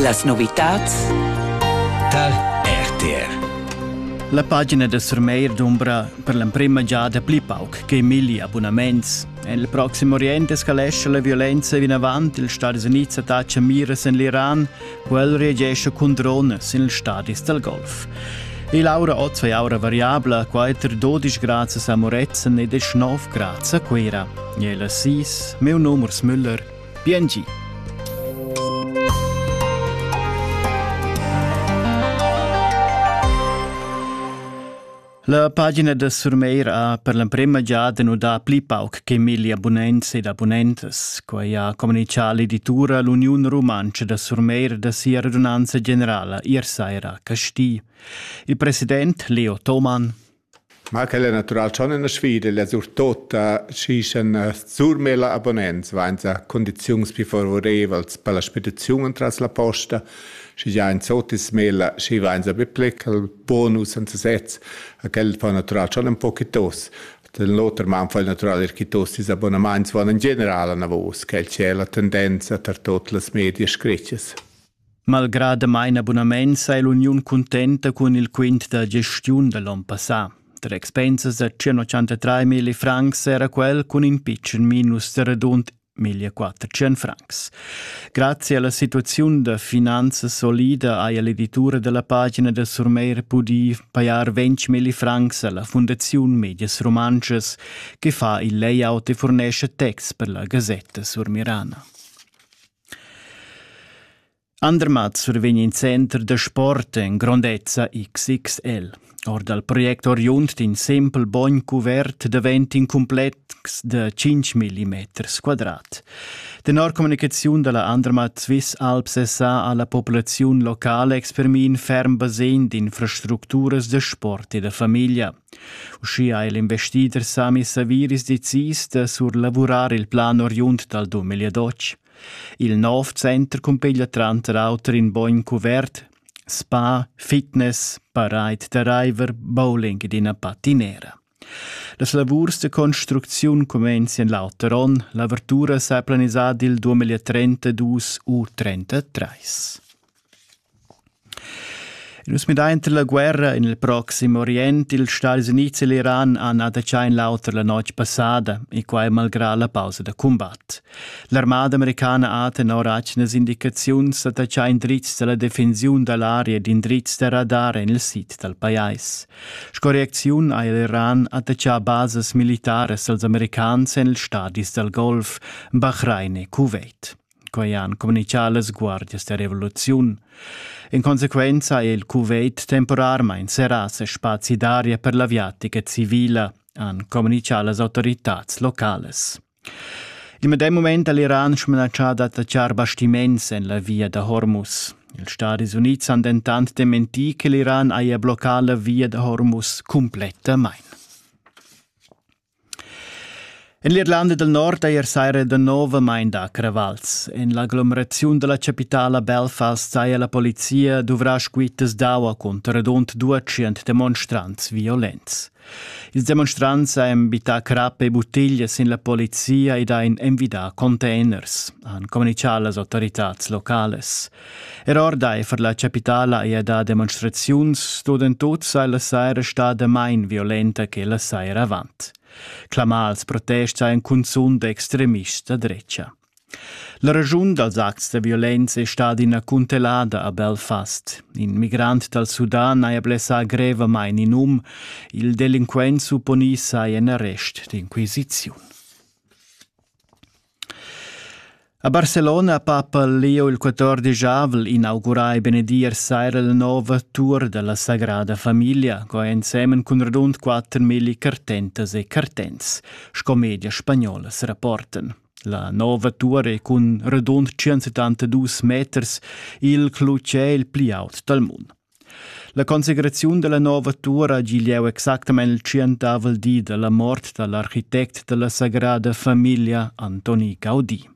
Las novitads tar RTR. La pagina da Surmeir dumbra per l'emprima giada pli pauc che milli abonnaments. En il proxim Orient escalescha la violenza vinavant. Il Stadis Unids attacca miras en l'Iran. Quel reagesce cun drones in stadis dal Golf. E l'aura oz è aura variabla, quater 12 grads a Moretzen ed 9 grads a Cuira. E la sis, meu numers Müller. Biengi. La pagina da Surmeir ha per l'emprema giada nudà pli pauc che milli abunents ed abunentas. Quai ha communitgà l'editura L'Uniun Rumantscha da Surmeir da sia radunanza generala ier saira a Casti. Il president Leo Thomann Ma quel è natural schon üna sfida, la surtotta schi sch'ün surmela abonnents vainsa condiziuns pü favorevels per la spediziun entras la posta, schi già in sot es smela schi vainsa be plecal bonus anta sez e quel fa natural schon ün po chi tos. Da l'oter man fa il natural eir chi tos ils abbonamaints vaun in general anavos, quel chi è la tendenza tar tuot las medias screttas. Malgrà damain abunament saja l'uniun cuntenta cun il quint da gestiun da l'onn passà. Tra expensas da 183 mila francs era quel cun in pitschen minus da radund 1400 francs. Grazie alla situazione da finanza solida haja l'editura della pagina da Surmeir pudì pajar 20 mila francs alla Fondazione Medias Romances, che fa il layout e fornisce texts per la Gazzetta Sur Mirana. Andermatt survegn in center da sport en grondezza XXL. Or dal project oriund d'in sempel bogn cuvert davent in cumplex da 5 mm quadrat. Tenor communicaziun da la Andermatt Swiss Alps SA ha la populaziun locala exprimì in ferm basegn d'infrastructuras da sport e da famiglia. Uschia ha el investider Sami Saviris decis da surlavurar il plan oriund dal dum Egliadotsch. Il nov center cumpeglia tranter auter in bogn cuvert, spa, fitness, parade da raiver, bowling ed ina patinera. Las lavurs da construcziun cumenzien l'auter onn, l'avertura s'ha planisà dil 2032 u 33. Nus midainter la guerra in il proxim Orient, ils Stadis Units e l'Iran han adattà in l'auter la notg passada, e quai malgrà la pausa da cumbat. L'armada americana ha tenor atgnas indicaziuns adattà indrizs da la defensiun da l'aria ed indrizs da radar en il sid dal pajais. Sco reacziun ha l'Iran adattà basas militaras als americans en ils stadis dal Golf, Bahrain e Kuwait. quei han communicà las guardias da revoluziun. In conseguenza è il Kuwait temporarmain serrà ses spazi d'aria per l'aviatica civila, han communicà las autoritats locales. Il medem moment ha l'Iran smanatschà d'attaccar bastiments en la via da Hormuz. Ils Stati Unids han dentant dementì che l'Iran haja bloccà la via da Hormuz cumplettamain. En l'Irlanda del Nord ei seira danovamain da cravals. En l'aglomeraziun dalla capitala Belfast saja la polizia duvrà squittas d'aua cunter radund 200 demonstrants violents. Ils demonstrants han bittà crap e buttiglias sin la polizia ed han envidà containers, han communicà las autoritads locales. Er ordaifer la chapitala ei da demonstraziuns dodentut sai la saira stada mein violenta che la saira avant. Clamals protest ein cunzun d'extremists da drecha. La ragiun dals acts da violenza è stata ina cuntelada a Belfast. In migrant dal Sudan haja blessà grevamain in um. Il delinquent supponì sai en arrest d'inquisiziun. A Barcelona papa Leo il quatordegiavel inaugurai benedier saira la nova tur dalla Sagrada Familia, co ensemen cun radund quattermilli cartentas e cartents, sco media spagnola se rapporten. La nova tur è cun radund 172 meters il clutgè il pli aut dal mund. La consecraziun dalla nova tuora ha gi lieu exactamein il tschientavel di dalla mort dall'architect dalla sagrada famiglia Antoni Caudi.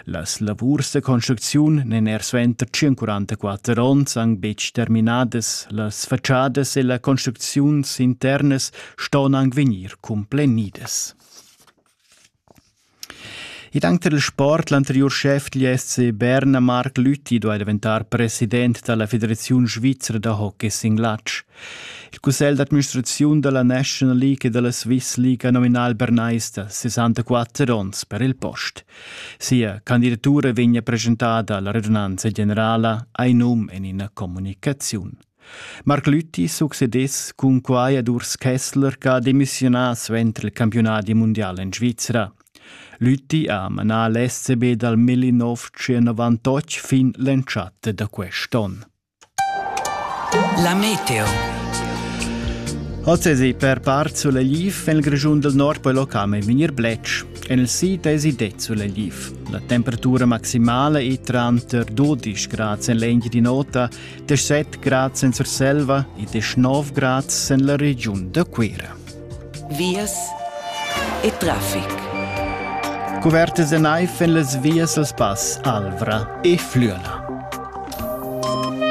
Las lavurs da construcziun n'en er suenter 144 onns anc betg terminadas, las faciadas e la construcziuns internas ston anc vegnir complenidas. Id auter il sport, l'anteriur schef dil SC Berna Marc Lüthi duai daventar president dalla Federaziun svizra da hockey sin glatsch. Il cussegl d'administraziun dalla National League e dalla Swiss League ha nominal bernaista 64 onns per il post. Sia candidatura vegna presentada alla radunanza generala, ei num en ina communicaziun. Marc Lüthi succedess cun quai ad Urs Kessler ch'ha demissiunà suenter il campiunadi mundial en Svizra. Lüthi ha manà l'SCB dal 1998 fin l'entschatta da quest'onn. La meteo. Ozzesi per part Sulelif en il Grischun del Nord poi locame vegnir bletsch. En il sid esi det Sulelif. La temperatura maximale è tranter 12 grad en l'egn di nota 17 grad sen Surselva e 19 grad sen la regiun da Cuira. Vias e traffic. Cuvertes en eif en las vias als pass Alvra e Flüela.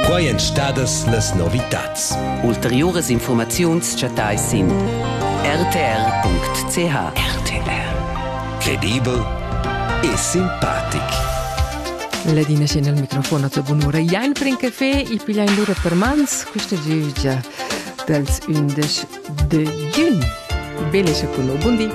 Quai èn stadas las novitats. Ulteriuras informaziuns chattai sin rtr.ch. RTR. Credibel e simpatic. Ladina scena al microfon a tua bunura. Iain pren caffè e piglia in lura per mans questa giugia dals 11 de giugn. Belle cioccolà, buon di!